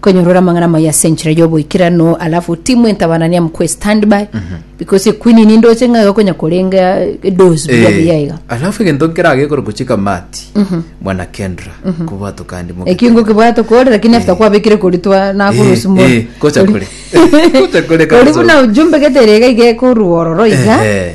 Kwenyorora amang'ana amaya ase enchera y'oboikeranu, alafu timu entabanania mkwe standby because equeen ninde oche ng'a iga konya korenga edozi buya Eh, buya iga alafu egento nkerage ekoro gochika mati mwana kendra kobwato kandi moke ekingo kibwate kore lakini after kwabekire kori twa nakurusi mo Eh, eh, gocha kore. Gocha kore kare ori buna ujumbe getere iga iga ekorwa ororo iga Ehe.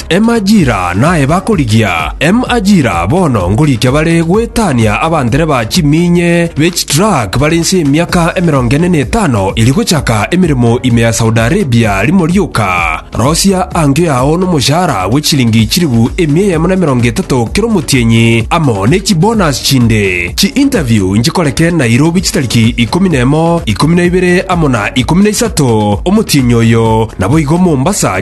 Emajira naye bakorigia emajira bono ngorikia bare goetania abandereba chiminye be chitruck bare inse y'emiaka emerongo ene na etano eri gochaka emeremo ime ya Saudi Arabia rimo rioka. Rosia angio yao nomoshahara bwe chilingi chilifu emia eyemo na emerongo etato kera omotienyi amo ne chibonus chinde. Chi-interview nchikoreke Nairobi chitariki ikomi na emo, ikomi na ibere amo na ikomi na isato omotienyi oyo, naboigo Mombasa